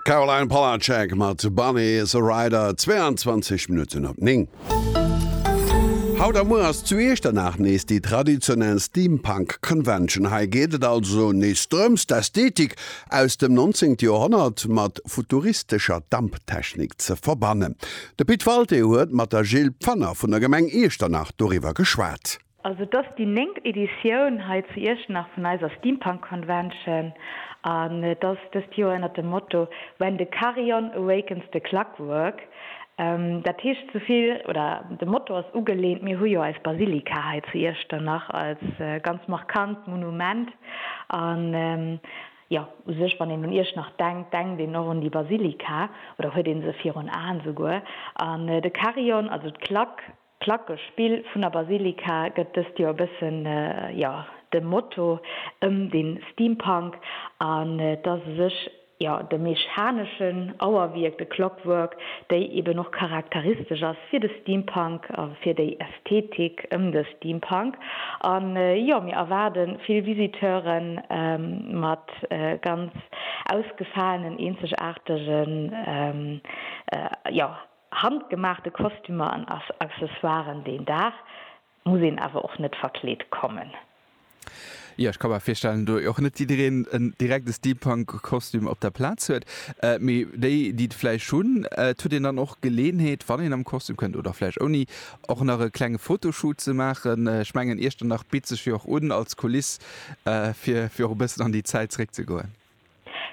Caroline Polacek mat Bunny is a Rider, 22 Minutten op 9. Haut a muer ass zu Iechternach nees déi traditionell Steampunk Convention. Hei geet et also nees drëms d'Ästhetik aus dem 19. Joerhonnert mat futuristescher Damptechnik ze verbannen. De Pit Walté huet mat der Jill Pfanner vun der Gemeng Iechternach doriwwer geschwat. Also et ass déi néngt Editioun hei zu Iechternach vun eiser Steampunk Convention an et ass dëst Joer ënnert dem Motto When the Carillon Awakens the Clockwork. Dat heescht esou vill, oder de Motto ass ugelehnt, mir hu jo eis Basilika hei zu Iechternach als ganz markant Monument an jo u sech wann een un Iechternach denkt, denkt een och un déi Basilika oder huet ee se virun Aen esouguer an de Carillon, also d'Klack, D'Placke Spill vun der Basilika gëtt dëst Joer e bëssen, jo, dem Motto ëm de Steampunk an et ass u sech, jo, de mechaneschen Auerwierk, de Clockwork, déi eben och charakteristesch ass fir de Steampunk a fir déi Ästhetik ëm de Steampunk. An, jo, mir erwaarde vill Visiteure mat ganz ausgefaalen, eenzegaartegen, jo, Handgemaachte Kostümer an Accessoiren, deen Dag muss een awer och net verkleet kommen. Jo, ech ka mer virstellen, do och net jiddereen en direkte Steampunk-Kostüm op der Plaz huet. Mee déi, déi et vläicht hunn, et huet een dann och d'Geleeënheet, wann een am Kostüm kënnt, oder vläicht ouni, och nach e klenge Fotoshoot ze maachen. Ech mengen, Iechternach bitt sech jo och un als Kuliss, fir och e bëssen an déi Zäit zeréckzegoen.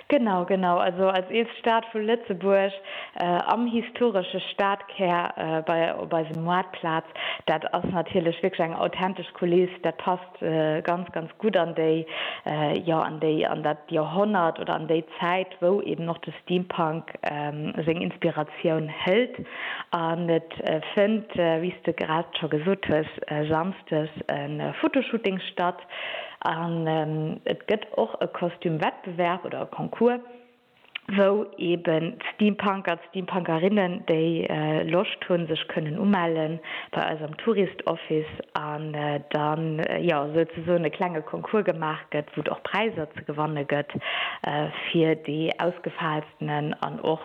Genau, genau. Also als eelst Stad vu Lëtzebuerg, am historesche Stadkär, bei op eisem Maartplaz, dat ass natierlech wierklech eng authentesch Kuliss. Dat passt ganz, ganz gutt an déi, jo, an déi, an dat Joerhonnert oder an déi Zäit, wou eben och de Steampunk seng Inspiratioun hëlt. An et fënnt, wéi s de grad scho gesot hues, samsdes e Fotoshooting statt. An et gëtt och e Kostüm-Wettbewerb oder e Concours, wou eben d'Steampunker, d'Steampunkerinnen, déi Loscht hunn, sech kënnen umelle bei eis am Tourist Office an da jo souzesoen e klenge Concours gemaach gëtt, wou et och Präiser ze gewanne gëtt fir déi ausgefaalstenen an och,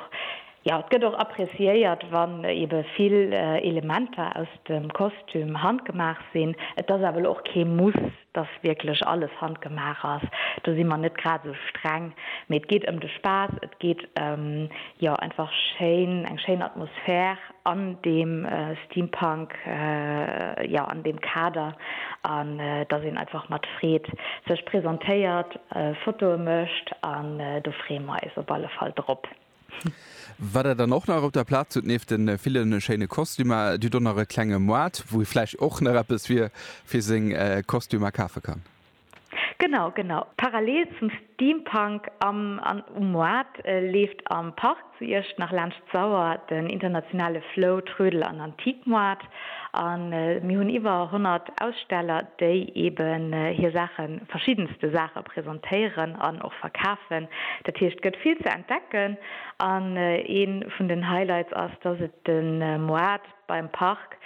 Jo, et gëtt och appreciéiert, wann ebe vill Elementer aus dem Kostüm handgemaach sinn. Et ass awer elo och kee Muss, dass wierklech alles handgemaach ass. Do si mer net grad esou streng. Mee et geet ëm de Spaass, et geet ëm, jo, einfach schéin, eng schéin Atmosphär an deem Steampunk, jo, an deem Kader. An dass een einfach mat Freed sech presentéiert, Fotoe mécht. An do freeë mer eis op alle Fall drop. Wat der dann och nach op der Plaz hutt, nieft de ville schéine Kostümer, dir hutt och nach e klenge Moart, wou ee vläicht och nach eppes fir seng Kostümer kafe kann. Genau, genau. Parallel zum Steampunk am an um Moart leeft am Park zu Iecht nach laanscht d'Sauer den internationale Flow, Trödel an Antiquemoart. A mir hunn iwwer 100 Aussteller, déi eben hir Saachen, verschiddenste Saache presentéieren an och verkafen. Dat heescht, et gëtt vill ze entdecken. An ee vun den Highlights ass, dass et de Moart beim Park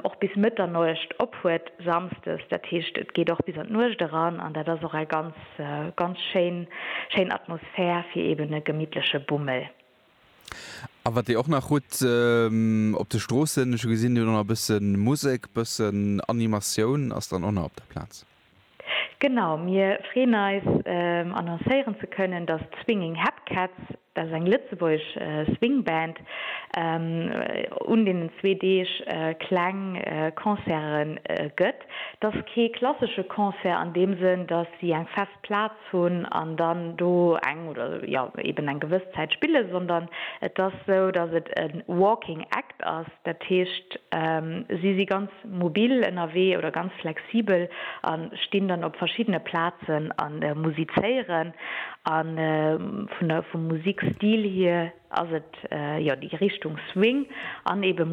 och bis Mëtternuecht op huet, samsdes. Dat heescht, et geet och bis an d'Nuecht eran an dat ass och eng ganz, ganz schéin, schéin Atmosphär fir eben e gemittleche Bummel. A wat Dir och nach hutt op de Stroossen, ech hu gesinn, Dir hutt och nach e bësse Musek, e bëssen Animatioun ass dann och nach op der Plaz. Genau, mir freeën eis annoncéieren ze kënnen, datt d'Swinging Hep Cats, dat ass eng lëtzebuergesch Swing Band, un deenen zwee Deeg kleng Concerte gëtt. Dat ass kee klassesche Concert an deem Sënn, datt si eng fest Plaz hunn an dann do eng oder jo eben eng gewëss Zäit spillen, sondern et ass esou, dass et e Walking Act ass, dat heescht si si ganz mobil ënnerwee oder ganz flexibel a stinn dann op verschiddene Plazen a musizéieren. A vun der vum Musikstil hier ass et jo déi Richtung Swing an eben.